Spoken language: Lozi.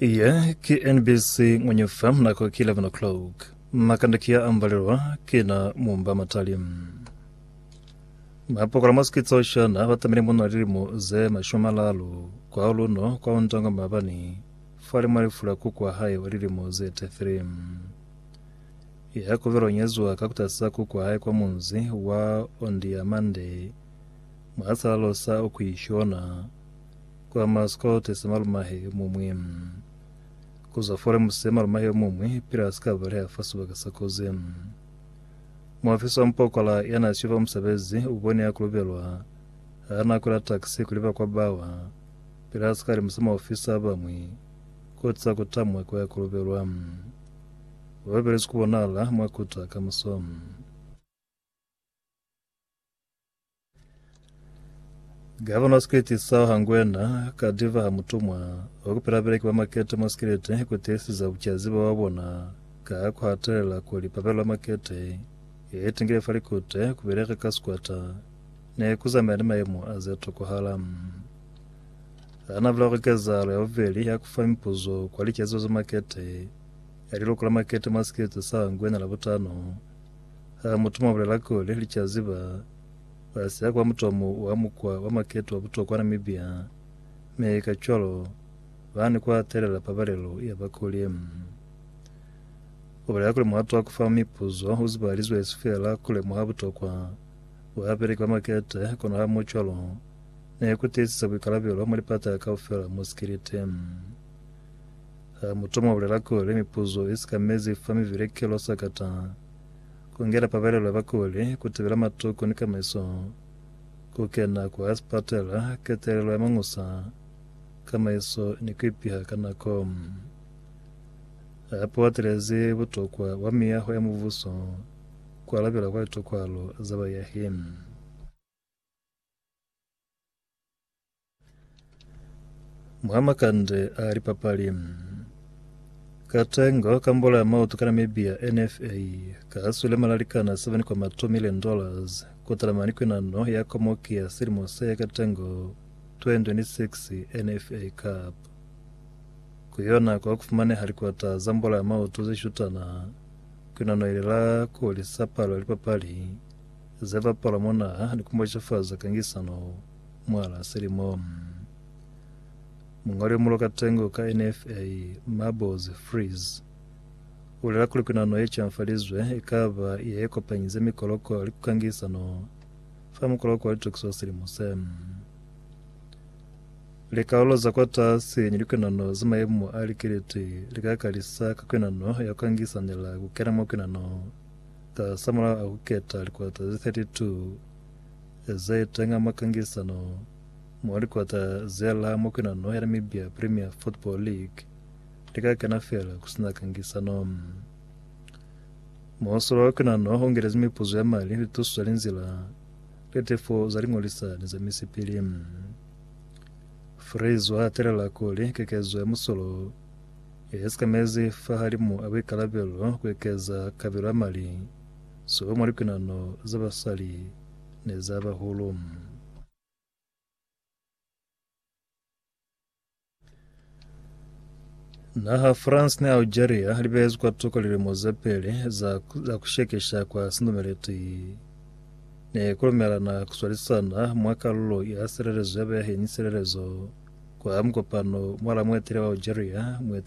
Iye ki NBC Ngwenye FM nako ki 11 o'clock. Makanda ki ya ambalelwa kina mumba matali. Mapokola mwa sikitso shana ba tamile muna lilimo ze mashumi malalu kwa luno kwa untango mabani fale mwa lifula kuku wa hae wa lilimo ze 33 ya kuvelo nyezuwa ka kutasa kuku wa hae kwa munzi wa Ondiamande mwa salalo sa Okuishona kwa Mascot se malumahe yo muñwi, ku zwa Forems se malumahe yo muñwi, pila si ka baleha fa sibaka sa kozi. Muafisi wa mupokola ya n'a siyo fa musebezi u bone ya kulubelwa ha n'a kwela taxi ku liba kwa bawa, pila si ka limisa maofisa a bañwi koti za ku tamwa kwa ya kulubelwa. Ba ba belezi ku bonahala mwa kuta kamuso. Gavana Skileti sa Hangwena ka diva ha mutumwa wa kupela beleki ba makete mwa Skileti ku tiisiza bucazi bwa bona ka ku hatelela kuli pa bela makete e tingile fa likute ku beleka ka sikwata ne ku zamaya ni mayemo a ze tokohala. Ha na bula kuli kezahalo ya bubeli ya ku fa mipuzo kwa licaziba za makete ya liluko la makete mwa Skileti sa Hangwena Labutano Ha mutu mwa bulela kuli, Li ca ziba, ba siya kwa mutomo wa mukwa wa maketo wa butokwa Namibia, mi kacwalo ba ni ku hatelela pabalelo ya bakuli. Ku bulela kuli muhato wa ku fa mipuzo u zibahalizwe esi feela ku lemuha butokwa bwa babeleki ba makete, kono hamucwalo ni ku tiisisa buikalabelo mwa lipata kaufela mwa sikiliti. Ha mu toma bulela kuli mipuzo i si ka mezi fa mivile ki lo sakata, ku ngela pabalelo ya bakuli, ku tibela matuku ni kamaiso, ku kena kwa sipatela, ketelelo ya mañusa, kamaiso ni ku ipiha ka nako. Hape u atelezi butokwa bwa miyaho ya mubuso, ku alabela kwa litokwaalo za bayahi. Mwa makande a lipapali katengo ka mbola ya maoto ka Namibia NFA kahaswile malalikana 7.2 million dollars kutala mani kwinano ya komoki ya silimo se ya katengo 2026 NFA Cup kuyona kwa kufumaneha likwata za mbola ya maoto zeshutana kwinano ile la kuhulisa palo ya lipapali Ze bapala mwa naha ni ku macafaza kangisano mwalaa silimo. Muñoli yo mulo ka tengo ka NFA, Mabozi Frees, u bulela kuli kwinano ye camfalizwe i ka ba ye ye kopanyize mikoloko li ku kangisano fa mukoloko wa litokiso wa silimo se. Likalolo za kwatasi ni likwinano za mayemo a likiliti li ka kalisa ka kwinano ya ku kangisanela ku kena mwa kwinano Ka sa mulaho a ku keta likota ze 32 ze tenga mwa kangisano mwa likota ze la Mokwena No. Ya Namibia Premier Football League li ka kena feela ku si na kangisano. Muhasolo wa Mokwena No. U ngelezi mipuzo ya mali, lituso za linzila, litefo za liñolisa ni za misipili. Fraser a telela kuli kekezo ya musolo Ye sekamezi fahalimu a buikalabelo ku ekeza kabelo ya mali soba mwa likwinano za basali ni za bahulu. Naha France ni Algeria li behezi kwa tuko lilimo ze peli za, za ku shekesha kwa sindumeleti ne ku lumelana ku swalisana mwa kalulo ya silelezo ya bayahi ni silelezo kwa mukopano mwa la muetele wa Algeria, muetele